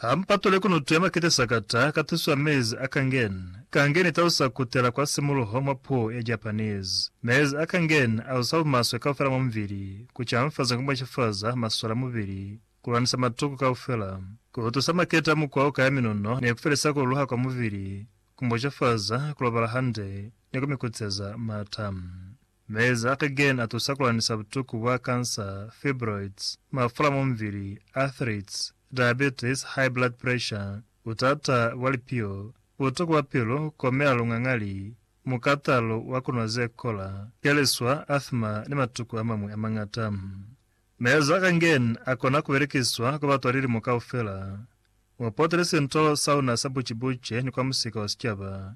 Ha mu patule kunutu ya makete sakata ka tuso ya mezi a kangen. Kangen i talusa ku tela kwa simuluho mwa puo ya Japanese. Mezi a kangen a usa bumaswe kaufela mwa mubili, ku canfaza ku mwacifaza masole a mubili, ku lwanisa matuku kaufela, ku tusa makete a mukwa o kaya minuno ni ku felisa ku luluha kwa mubili, ku mwacafaza ku lobala hande, ni ku mi kuteza m'ata. Maezi a kegeni a tusa ku lanisa butuku bwa kansa, fibroids, mafula mwa mubili, arthritis, diabetes, high blood pressure, butata bwa lipio, butuku bwa pilu, ku komela lungangali, mukatalo wa ku nwa ze kola, keliswa, asthma ni matuku a mañwi a mañata. Maezi a kegeni a kona ku belekiswa kwa batwa lilimo kaufela. Mu potele sinto sauna sa buci-buci ni kwa musika wa sicaba.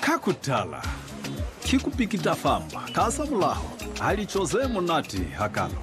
Ka ku tala, ki ku pikita famba ka za mulaho ha lico ze munati hakalo.